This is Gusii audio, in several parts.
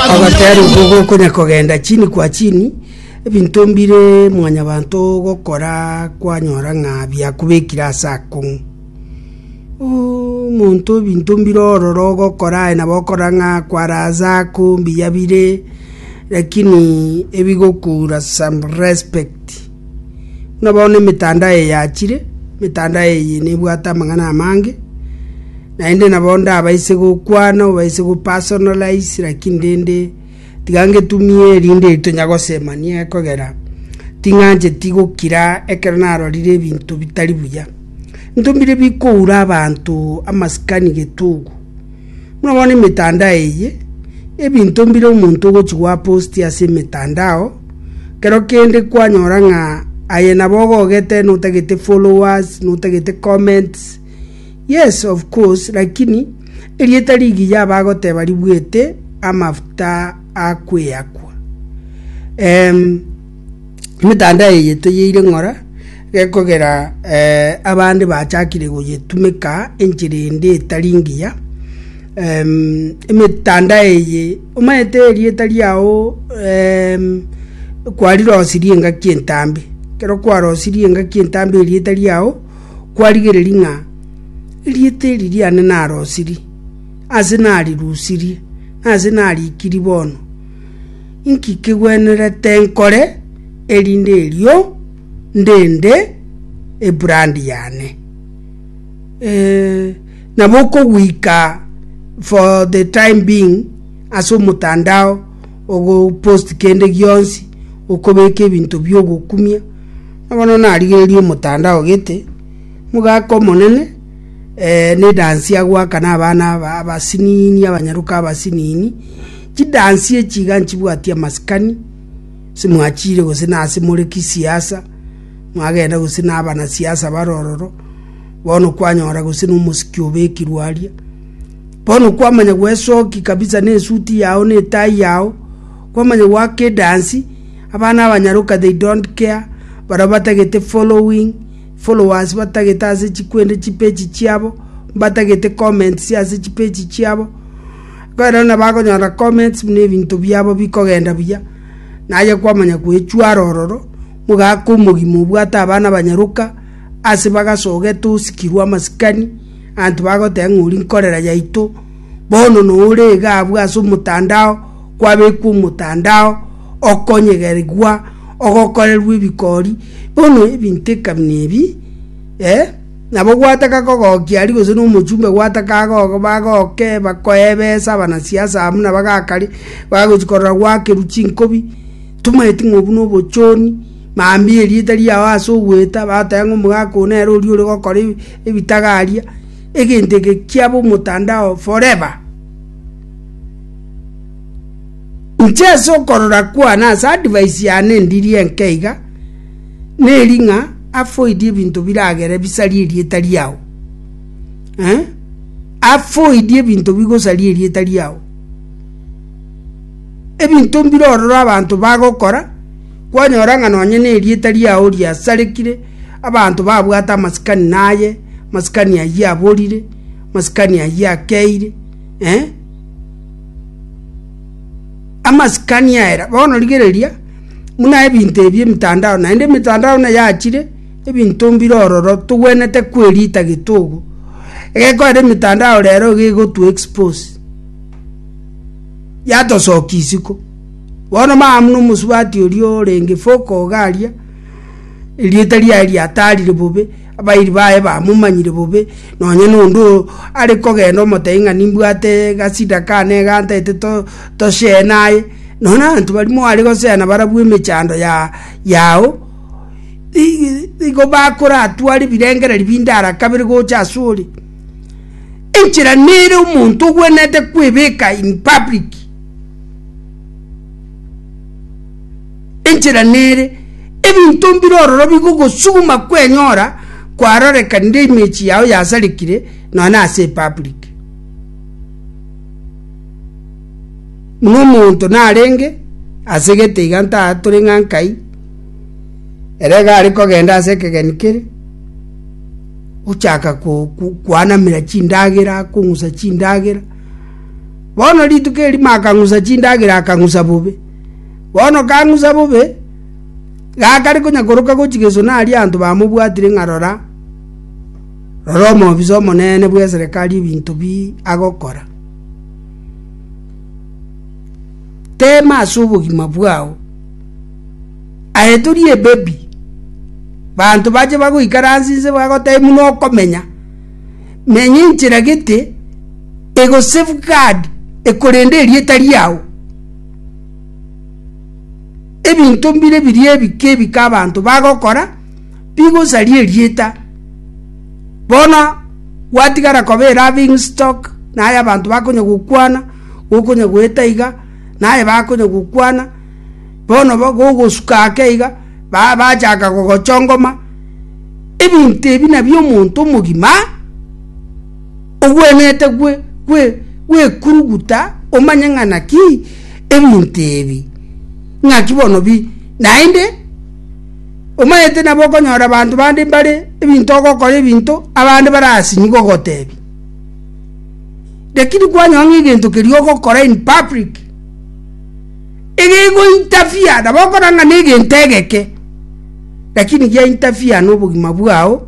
Agatari obwo gokonya kogenda chini kwa chini ebinto mbire mwanyabanto gokora kwanyora ng'a biakubekire ase akong'u omonto ebinto mbire ororo ogokora aye nabo okora ng'a kwaraza aku mbiya bire lakini ebigokura some respect Buna bono emetanda eye yachire, emetanda eye nebwate amang'ana amange, naende nabo ndabaise gokwana, obaise gopersonalize, lakini rende tiga ngetumie erinde eri tonyagosemania ekogera ting'ancheti gokira ekero narorire ebinto bitari buya. Nto mbire bikoura abanto amasikani gitugo. Buna bono emetanda eye, ebinto mbire omonto ogochi goa post ase emetandao. Kero kende kwanyora ng'a aye nabo ogogete notagete followers, notagete comments. Yes of course lakini erieta rigiya abagoteba ribuete amafuta a kweyakwa. Ehm emetandao eye toyeire ng'ora Gekogera abande bachakire goyetumeka enchera ende etari ngiya, emetandao eye, omanyete erieta riao kwarirosirie engaki entambe, ekero kwarosirie engaki entambe erieta riao, kwarigereria ng'a erieta eri riane narosirie, ase narirusirie, ase narikirie bono, inki kegwenerete nkore erinde erio. ndende ebrandi yane, eeh, nabo okogoika for the time being ase omotandao ogopost kende gionsi, okobeka ebinto bio ogokumia, nabono narigereria omotandao gete, mogaka omonene eeh nedansi agoaka na abana aba abasinini abanyaroka abasinini, chidansi echi iga nchibwati amasikani. Simwachiire gose nase more kisiasa, mwagenda gose nabanasiasa barororo, bono kwanyora gose nomosiki obekirwe aria. Bono kwamanya gwesoki kabisa nesuti yao na etai yao, kwamanya goaka edansi, abana abanyaroka they don't care, barabwo batagete following, followers batagete ase chikwende chipage chiabo, mbatagete comments ase chipage chiabo, Barabwo nabakonyora comments buna ebinto biabo bikogenda buya, naye kwamanya kwechwara ororo, mogaka omogima obwate abana banyaroka, ase bagasogete osikirwe amasikani, abanto bagoteba ng'a ori nkorera yaito, bono noo ore iga abwo ase omotandao, kwabekwa omotandao, okonyegerigwa, ogokorerwa ebikori, bono ebinto ekabina ebi eh. Nabo gwataka kogokia aria gose nomochumba gwataka agogo bagoke bakoe ebesa abanasiasa abwo na bagakari bagochia korora gwakerwa chinkobi tomaeti ng'a obwo nobochoni mambia erieta riao ase ogoeta bateba ng'a omogaka oyo nere oria ore gokora ebitagaria egento eke kiabe omotandao forever. Inche ase okorora kwane ase advice yane ndirie enke iga. neri ng'a avoid ebinto biragere bisarie erieta riao, eh, avoid ebinto bigosaria erieta riao. Ebinto mbire ororo abanto bagokora, kwanyora ng'a nonye na erieta riao riasarekire, abanto babwate amasikani naye, masikani aywo aborire, masikani aywo akeire, eh, amasikani aya, bono rigereria. buna ebinto ebi emetandao, naende emetandao na yachire ebinto mbire ororo togwenerete kwerita getogo, egekorera emetandao rero iga egotu expose, yatosokia isiko, bono mama buna omosubati oria orenge fokoga aria, erieta riaye riatarire bobe. Abairi baye bamomanyire bobe, nonya nonde are kogenda omotebi ng'a nimbwate gasida kane iga ntaete toshare naye. Nonya abanto baria moare gosena barabwo emechando yao, igo bakoratware ebirengererio binde ara kabere gocha ase ore. Enchera nere omonto ogwenerete kwebeka in public. Enchera nere, ebinto mbire ororo bigogosuguma kwenyora kwarorekanire image yao yasarekire nonye ase epublic. Buna omonto narenge asegete iga ntaa tore ng'a nkai ere iga are kogenda ase ekegeni kere ochaka kwanamera chindagera akong'usa chindagera bono rituko eri makang'usa chindagera akang'usa bobe. Bono kang'usa bobe, gakare konya koroka gochia Gesona aria abanto bamobwatire ng'a rora, rora omobisa omonene bw'eserekari ebinto bi agokora. Teema ase obogima bwao. Aye tori ebebi, banto bache bagoikaranse inse bagotebia buna okomenya, menya enchera gete ego safeguard ekorende erieta riao. Ebinto mbire biria ebike ebike abanto bagokora bigosaria erieta? Bono gwatigara koba elaving stock naye abanto bakonya gokwana, gokonya goeta iga naye bakonya gokwana, bono gogosuka ake iga bachaka gogochongoma, ebinto ebi nabio omonto omogima. Ogwenerete gwekuruguta omanye ng'a naki ebinto ebi, ng'aki bono bi, naende omanyete nabo okonyora abanto bande mbare ebinto ogokora ebinto abande barasinye gogotebia. Lakini kwanyora ng'a egento keria ogokora in public, iga egointerfere nabo okora ng'a na egento egeke, lakini gia interfere na obogima bwao.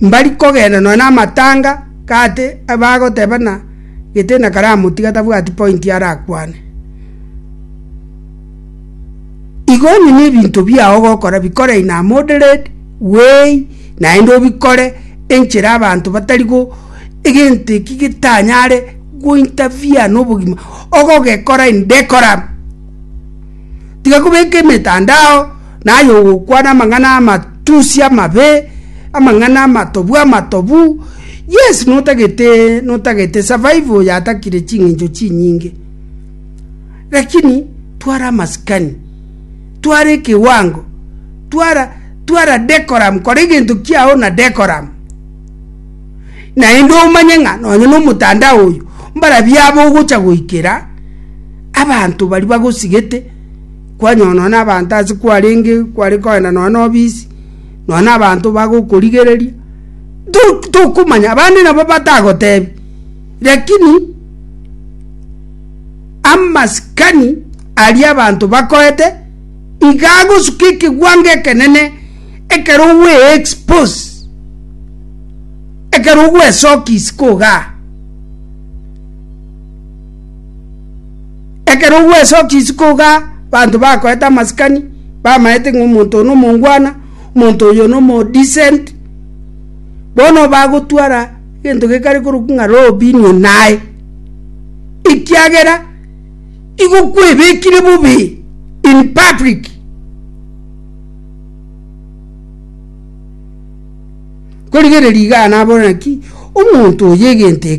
Mbari kogenda nonya na amatanga gati bagoteba na gete na karamu tiga tabwati point arakwane. Igo onye ne ebinto biao ogokora bikore in a moderate way naende obikore enchera abanto batari go egento ekio getanyare go interfere na obogima ogogekora in decorum. Tiga kobeka emetandao. na aye ogokwana amang'ana amatusi, amabe, amang'ana amatobu, amatobu. Yes, notagete, notagete survive oyo atakire ching'encho chinyinge. Lakini tware amasikani, tware ekewango, twara, twara decorum, kora egento kiao na decorum. Naende omanye ng'a nonye na omotandao oyo, mbarabia abo ogocha goikera, abanto baria bagosigete, Kwanyora nonya nabaanto ase kwarenge kware koenda nonya nobisi, nonya nabaanto bagokorigereria, tokomanya, abande nabo batagotebi, rakini amasikani aria abanto bakoete, iga agosuka ekegwango ekenene ekero ogwe expose, ekero ogwesoka isiko igaa. Ekero ogwesokia isiko iga abanto bakoete amasikani, bamaete ng'a omonto oyo nomongwana, omonto oyo nomo decent, bono bagotwara egento gekare korokwa ng'a raw opinion naye, ekiagera igo kwebekire bobe in public. Nkorigereria igaa naboorera ng'a ki, omonto oyo egento eke.